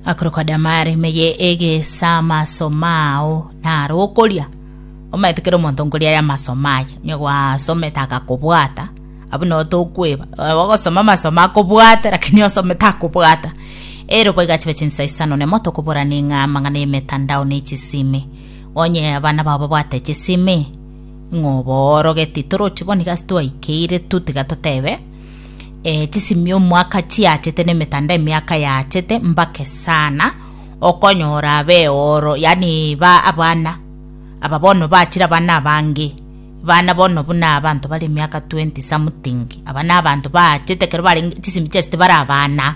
Akorokwa Damari, meye egesa amasoma ao naro okoria. Omanyete kera omonto nkoria aye amasoma aye, onye gwasomete agakobwata, abwo nabo tokweba, ogosoma amasoma akobwate lakini osome takobwata. Ero boigo achibe chinsa isano nemo tokoborani ng'a amang'ana y'emetandao ne chisimi. Onye abana bao babwate chisimi, ng'a obooroge titorochi bo nigo ase twaikeire tu tiga totebe eh, tisimia omwaka chiachete na emetanda emiaka yaachete mbake sana okonyora abe oro yani ba abana aba bono bachire abana abange bana bono buna abanto bari emiaka 20 something aba na abanto baachete kero bare chisimi chiasete bare abana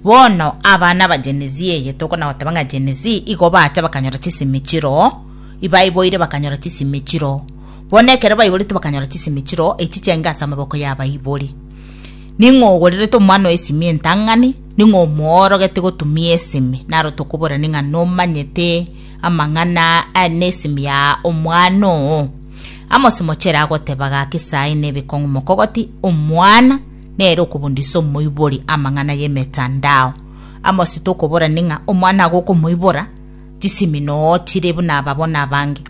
bono abana aba genezi eye tokona goteba ng'a genezi igo bacha bakanyora chisimi chiro ibaiboire bakanyora chisimi chiro Bono ekero baiboretwe bakanyora chisemi chiroo echi chiaenge ase amaboko y'abaibori. Ning'o ogorirete omwana oesimi entang'ani? Ning'o omoorogete gotumia esemi? Naro tokoborani ng'a nomanyete amang'ana aya nesemi ya omwana oo. Amosi mochere agoteba gaki saii nebikong'u mokogoti omwana nere okobundisa omoibori amang'ana y'emetandao. Amosi tokoborani ng'a omwana agokomoibora Chisemi noo chire buna aba bono abange.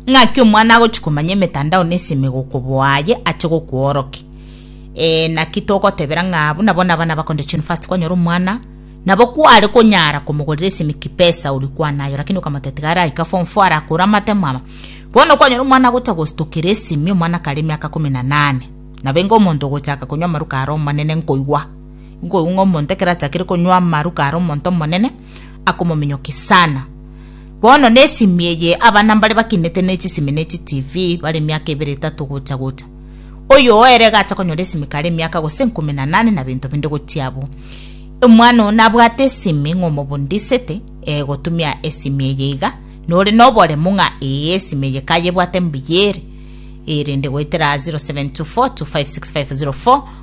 Ng'aki omwana agochi komanya emetandao na esemi gokoboa aye ache gokworoke. Eh, naki togotebera ng'a buna bono abana bakonde chunifasti kwanyora omwana, nabo kware konyara komogorera esemi kipesa oria kwana aye lakini okamotebia tiga araika form four arakore amatemo ama. Bono kwanyora omwana agocha gostokera esemi omwana kare emiaka kumi na nane. Nabo enga omonto ogochaka konywa amaruka are omonene nkoigwa. Nkoigwa ng'a omonto ekero achakire konywa amaruka are omonto omonene, akomominyokia sana. Bono nesimi eye abana mbare bakinete ne chisimi ne chi TV bare miaka ebere etato gocha gocha. Oyo oere agacha konyora esimi kare miaka gose nkumi na nane na binto binde gochia abwo. Omwana oyo nabwate esimi ng'a omobundisete eh, gotumia esimi eye iga nore noboremu ng'a ee esimi eye kayebwate mbuya ere erende goetera 0724256504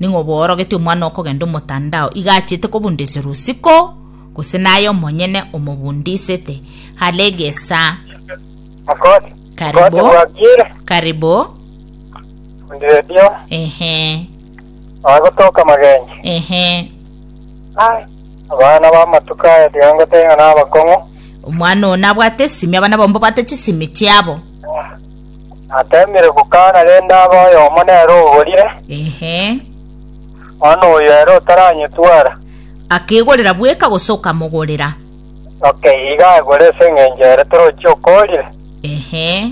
Ning'o bworogetie omwana okogenda omotandao iga achete kobundisirwa usiko, gose naye omonyene omobundisete? Hale gesaa. Mokori, Karibu. mokori bwakire, Karibu. ndiredio, Ehe. oye gotoka magenyi. Ehe. Ai, abana b'amatuko aya tiga ngoteba ng'a nabakong'u. Omwana oyo nabwate esimi, abana bomba bate chisimi chiabo. Ateemire gokaana rende abe oyomo nere oborire, Ehe. bono oyo ere otaranyetwara. Akegorera bweka gose okamogorera? Oke, iga agore ase engencho ere torochi okorire. Ehe.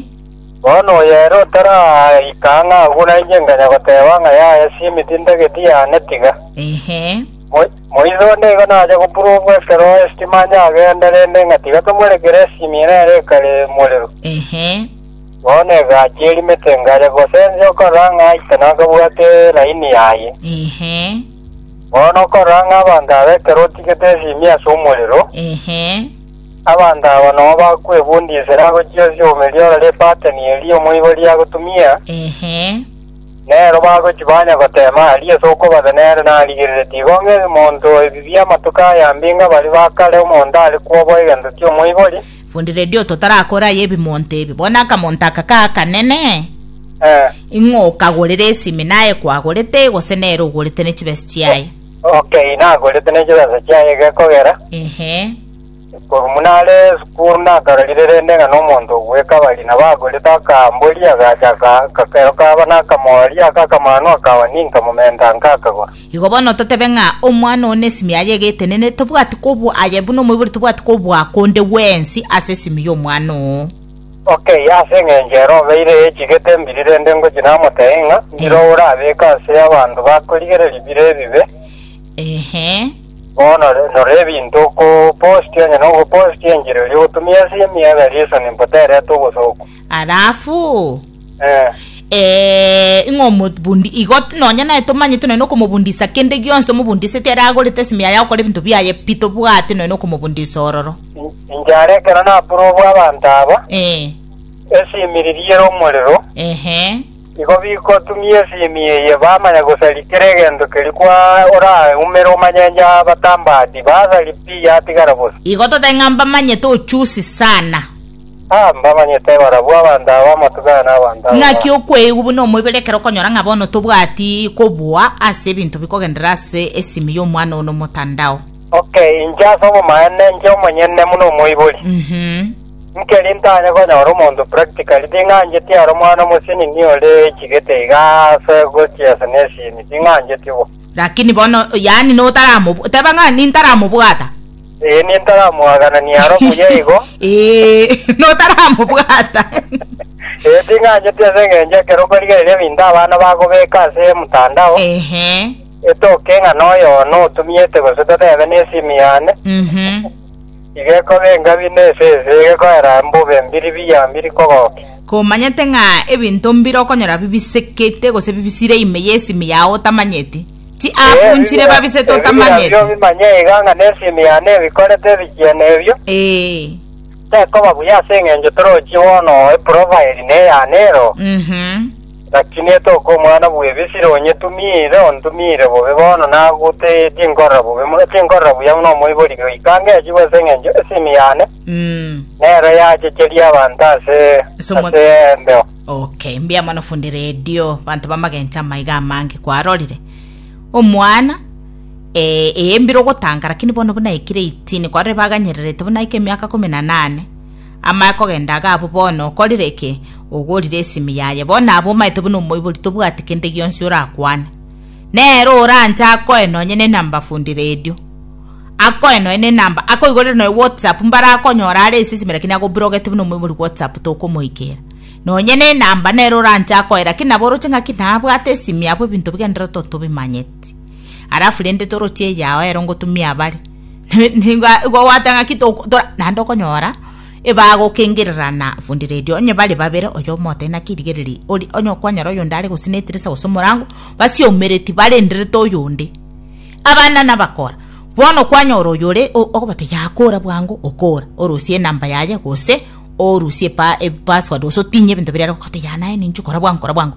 Bono oyo ere otaraika ang'aa agwo nainche nkanya goteeba ng'a, Yaya, Simi, tintageti, yaane, tiga. Ehe. Mo- Moiso nigo nacha gopurugwa ekero esitima anye agenda, rende ngatiga tomorekera esimi ere ere ekare morero. Ehe. Bono egachia erimete ngacha gosensia okorora ng'a aite nakabwate laini yaye. Ehe. Bono okorora ng'a abanto aba ekero otigete esimi ase omorero, Ehe. abanto aba nao bakwebundisera agochia osio omerie orore epateni eria omoibori agotumia, Ehe. Nero bagochia banya goteema aria ase okobatha nere narigerere tigo ng'e monto ebibia amatuko aya mbinga baria ba kare omonto are kwoboa egento ki'omoibori. Fundi radio totarakore aye ebimonto ebi. Bono akamonto aka ka akanene? Eh. Ing'o okagorera esimi naye kwagorete gose nere ogorete ne chibesa chiaye? Okay, nagorete ne chibesa chiaye gekogera. Ehe. Korumuna are esukuru nakarorire rende ng'a nomonto ogwekabari, nabo agorete akaamboria, agacha aka, akakero kaba nakamooria, aka akamanu akaba ninka momento anka akagora. Igo bono totebe ng'a omwana oo nesimi yaye egetenene, tobwati kobua aye buna omoibori tobwati kobua konde gwensi ase esimi y'omwana oo. Ok, ase engencho ere obeire echigete mbiri rende ngochia namotebie ng'a, Mbira oraabeke ase abanto bakorigereria bire ebibe? Ehe. Bono rora ebinto okopostia, onye nogopostia enchera eria ogotumia ase emiaka eria isano impo terete obosooku. Alafu Eh, eh, ing'o omobundi igo t- nonya naye tomanyete nonya okomobundisa kende gionsi tomobundiseti ere agorete esimi yaye agokora ebinto biaye pi tobwate nonya okomobundisa ororo in- inche are ekero naprobu abanto aba, eh, esimiri riere omorero, ehe Nigo bigotumia esimi eye bamanya gosari kera egento keria kwa oraumere omanyenye abatambati basari pi yatigara bosa. Igo totae ng'a mbamanyete ochusi sana. Ah, mbamanyete barabwo abanto aba amatugana na abanto aba Naki ba. okweigwa buna omoibere ekero okonyora ng'a bono tobwati kobua ase ebinto bikogenderera ase esimi y'omwana one omotandao. Okay, inche ase obomaene, inche omonyene buna omoibori. Mhm. Nkeri ntanye konyora omonto practically ting'ancheti aro mwana omosinini ore chigete iga ase gochia ase nesimi ting'ancheti bo. Lakini bono yaani notaramobw teba ng'a nintaramobwata. Ee nintaramwaganania aro buya igo. Ee notaramobwata. Ee ting'ancheti ase eng'encho ekero okorigereria ebinto abana bagobeka ase mtandao. Ehe. Etoke ng'a noyo oyo notumiete gose totebe nesimi yane. Mhm. Igekoba engabi na esese egekoera mbobe mbiri biya mbiri kogokia. Komanyete ng'a ebinto mbire okonyora bibisekete gose bibisire ime y'esimi yao otamanyeti? Ti akunchire babisete otamanyeti? Ebibira biobio manye iga ng'a nesimi yane ebikorete ebichiene ebio. Ee. Tekoba buya ase engencho torochie bono eprofaeli neyane ero. Uhum. Naki netoka omwana bw'ebisire onyetumiire, ontumiire bobe bono nagute tinkorora bobe buna tinkorora buya buna omoibori goika ngechigwa ase engencho esimi yane Mm. nero yachecheria abanto ase Ase omwa- ase embeo. Okay, mbuya mono fundi redio banto bamagencho amaiga amange kwarorire omwana eh, eyembire ogotanga lakini bono buna aikire 18 kwarorire baganyererete buna aike emiaka kumi na nane Amae kogenda iga abwo bono okorire ki? Ogorire esimi yaye bono abwo omaete buna omoibori tobwati kende gionsi orakwane. Nere oranche akoe nonye ne number fundi radio. Akoe nonye ne number akoigorere nonye WhatsApp mbare akonyora are ase esimi lakini agobrogete buna omoibori WhatsApp tokomoikera. Nonye ne number nere oranche akoe lakini nabo oroche ng'aki nabwate esimi abwo ebinto bigendererete otobimanyeti. alafu rende toroche eyao ero ngotumia abare Ne- nigo igo gwateba ng'aki toku- tora- naende okonyora ebagokengererana fundi redio onye bare babere oyo omote naki rigereria ori onye okwanyora oyonde are gose netirisa gose omorango basiaumereti barenderete oyonde abana nabakora bono kwanyora oyore o- ogobatebia yaya kora bwango okora orosie enamba yaye gose orusie epa- epassword gose otinye ebinto biria are gokora oteba yaya naye ninche kora bwango kora bwango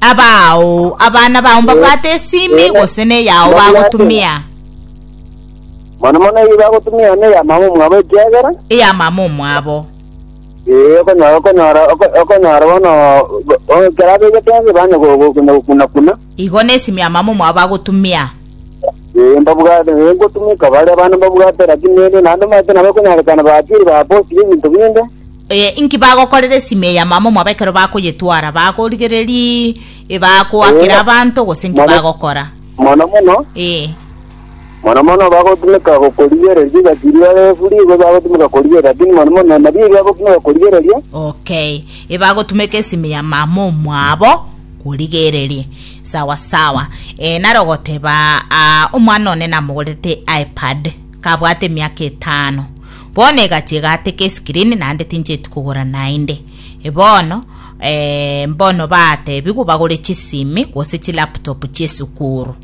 Abaao, abana bao mbabwate esimi gose neyao bagotumia? Mono mono eyio bagotumia neya mama omwabo ekiagera Eya mama omwabo. ee okonyora okonyora oko- okonyora bono go- o- ekero abegete ense banye go- go- konya gokuna kuna Igo nesimi ya mama omwabo bagotumia. ee mbabwate ee ngotumika baria abana mbabwate lakini nere naende omanyete nabo ekonyarekana batiri baposire ebinto binde Ee, inki bagokorera esime eya mama mwabo ekero bakoyetwara? Bagorigereri bakoakera Ee. abanto gose inki Mono- bagokora? Mono mono, Ee. mono mono bagotumeka gokorigereria egati riria refuri, igo bagotumeka korigereria, lakini mono mono nabio ebi bagotumeka korigereria. Okay. Ebagotumeka esime ya mama omwabo korigereria. Sawa sawa. E, naro goteba ah, omwana one namogorete iPad kabwate emiaka etano. Bono egati egateka esikirini naende tincheti kogora naende. Bono eeh mbono batebigwe bagore chisimi gose chilaptop chiesukuru.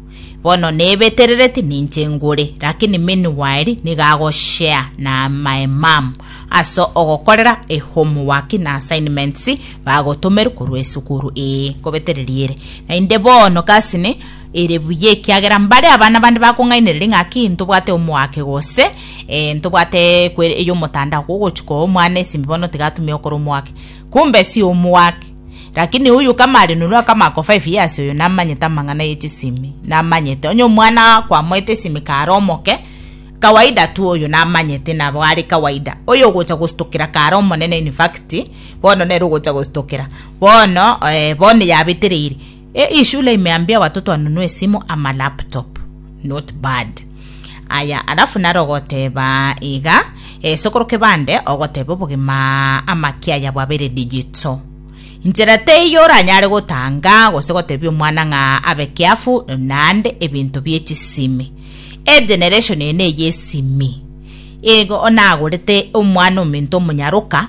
Bono nebeterereti ninche ngore lakini meanwhile nigo ago share na my mum ase ogokorera ehomework na assignments bagotomerwe korwa esukuru eeh ngobetereria ere. Naende bono gasi ne. Ere buya, ekiagera mbare abana bande bakong'ainereria ng'a ki ntobwate omoake gose eh, ntobwate kwere ey'omotandao kogochia koa omwana esimi bono tiga atumia okora omoake. Kumbe si omoake. Lakini oyo kama are norua kama ako five years oyo namanyete amang'ana ye chisimi, namanyete. Onye omwana kwamoete esimi kare omoke, kawaida tu oyo namanyete nabo are kawaida. Oyo ogocha gostokera kare omonene in fact, bono nere ogocha gostokera. Bono eh, bono yabetereire. Hii shule imeambia watoto wanunue simu ama laptop not bad aya alafu naro goteba iga e, sokoro kebande ogoteba obogima ama kiaya bwabere digito inchera teiyo oranyare gotanga gose gotebia omwana ng'a abe kiafu nande ebinto bie chisimi egeneration ene eye esimi igo onagorete omwana ominto omonyaroka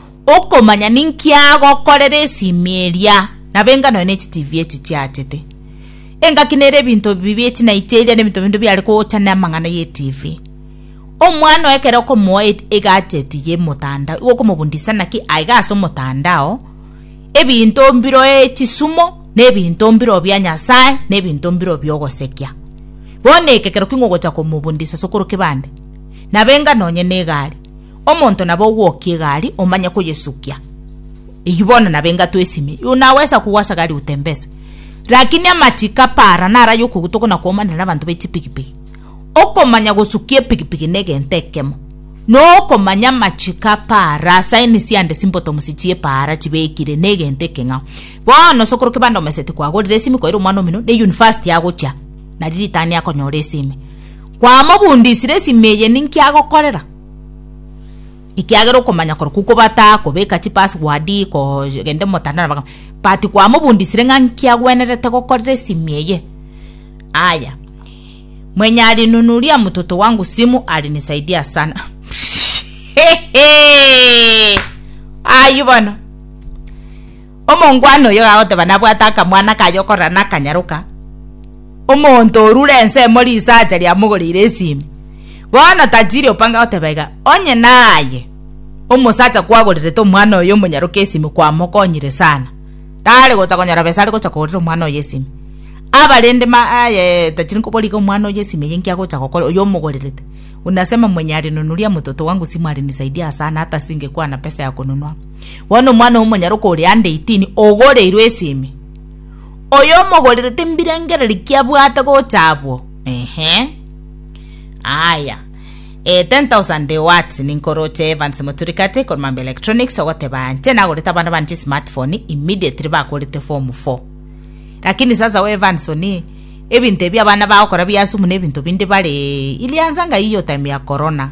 okomanya ninki agokorera esiimi eria nabo enga nonya ne chitivi echi chiachete. Engaki nere ebinto ebi bie chinaiti eria ne ebinto binde biare kogocha ne amang'ana ye tivi. Omwana oye ekero okomoa e- egacheti ye motandao igo okomobundisa naki aiga ase omotandao ebinto mbiro echisumo ne ebinto mbiro bia Nyasaye ne ebinto mbiro bia ogosekia. Bono ekekero king'ogocha komobundisa ase okorokwa ebande nabo enga nonya ne egari. Omonto nabe ogwokia egari omanye koyesukia. Eyio bono nabe engato esime. You now wesa kugwa ase gari utembese. Lakini amachiko apara naro ay'okoguta okona komanera abanto be chipigipigi. Okomanya gosukia epigipigi ne egento ekemo. Na okomanya amachiko apara, signs sia the symptoms chie para chibekire ne egento ekeng'ao. Bono ase okorokia bande omeseti kwagorire esimi kwaira omwana omino ne university agochia nari ritania akonyora esime. Kwamobundisire esime eye ninki agokorera. ekiagera okomanya kore kukobata kobeka chipasswadi kogende motandao nabanga but kwamobundisire ng'a nki agwenerete gokorera esimi eye aya mwenye alinunulia mtoto wangu simu alinisaidia sana ayio bono Omongwana oyio gagoteba nabwate akamwana kaye okorora nakanyaroka, omonto orure ensemo risacha riamogoreire esimi. Bono tajiri opanga goteba iga, Onye naye omosacha kwagorerete omwana oyo omonyaroke esimi kwamokonyire sana, tare gocha konyora besa are gocha kogorera omwana oyo esimi. Abarende ma aye tajiri nkoborie iga omwana oyo esimi eye inki agocha gokora oyo omogorerete? Unasema mwenye alininunulia mtoto wangu simu alinisaidia sana hata singekuwa na pesa ya kununua. Bono omwana omonyaroka oria ande eitini ogoreirwe ase ime, oyo omogorerete embirengererio ki abwate gocha abwo? Ehe. Aya. Eh, 10,000 de watts ninkoroche Evans Muturikate korwa Mambo Electronics ogoteba nche nagorete abana bane chismartphone immediately bakorete form four. Lakini sasa we Evans one ebinto ebi abana bagokora bia asumu na ebinto binde bare iliansa ng'ai hiyo time ya corona.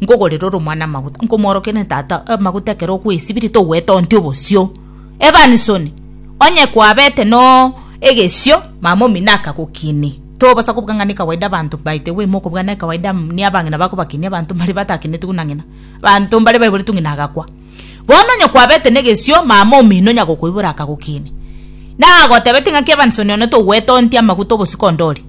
Nkogorere ore omwana amaguta, nkomoorokerie tata amaguta ekero okwesibirie, togwetonti obosio. Evanson, Onye kwabete no egesio, mama omino akagokinia. Tobosa kobuga ng'a ne kawaida abanto by the way mokobuga ne kawaida muna abang'ina bakobakinia abanto mbare batakinetwe buna ng'ina. Abanto mbare baiboretwe ng'ina agakwa. Bono onye kwabete ne egesio, mama omino nyagokoibora akagokinia. Nagotebetie ng'aki Evanson one togwetonti amaguta obosio konde oria.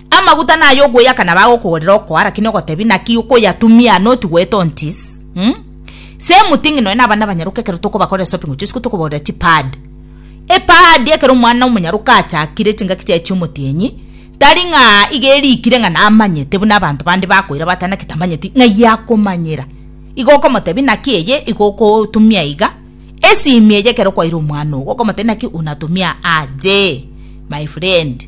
Amaguta naye ogoyaka na bagokogorera okoa lakini ogotebi naki okoyatumia not goeta on tis mm? Same thing nonya na abana abanyaruka ekero tokobakorera shopping gochia isiko tokobagorera chi pad epad ekero omwana omonyaruka achakire chingaki chiaye chia omotienyi tari ng'a iga erikire ng'a namanyete buna abanto bande bakoira bateba naki tamanyeti ng'ai akomanyera igo okomotebi naki eye igo okotumia iga esimi eye ekero kwaire omwana ogo okomotebi naki unatumia aje my friend.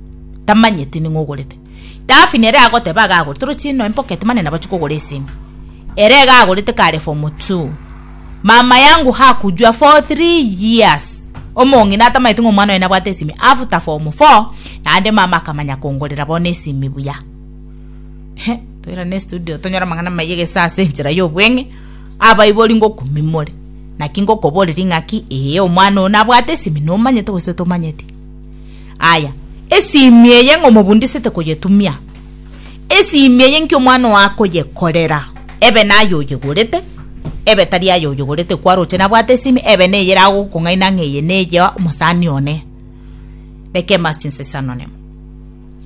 tamanyeti ning'o ogorete. Dafi nere agoteba iga agorete, oroche inwe imboka etemane nabache kogora esimi. Ere iga agorete kare form two. Mama yangu hakujua for three years. Omong'ina atamanyeti ng'a omwana oye nabwate esimi after form four naende mama akamanya kongorera bono esimi buya. He, toirane estudio tonyore amang'ana amaya egese ase enchera y'obweng'e. Abaibori ngokumimore, naki ngokoboreria ng'aki ee omwana oyo nabwate esimi nomanyete gose tomanyeti. Aya, esiimi eye ng'a omobundisete koyetumia, esiimi eye nki omwana oo akoyekorera, ebe naye oyegorete, ebe tari aye oyegorete kwaroche nabwate esiimi, ebe neye eragokong'aina ng'a eye neye omosani one. Reka embaso chinse chisananemo.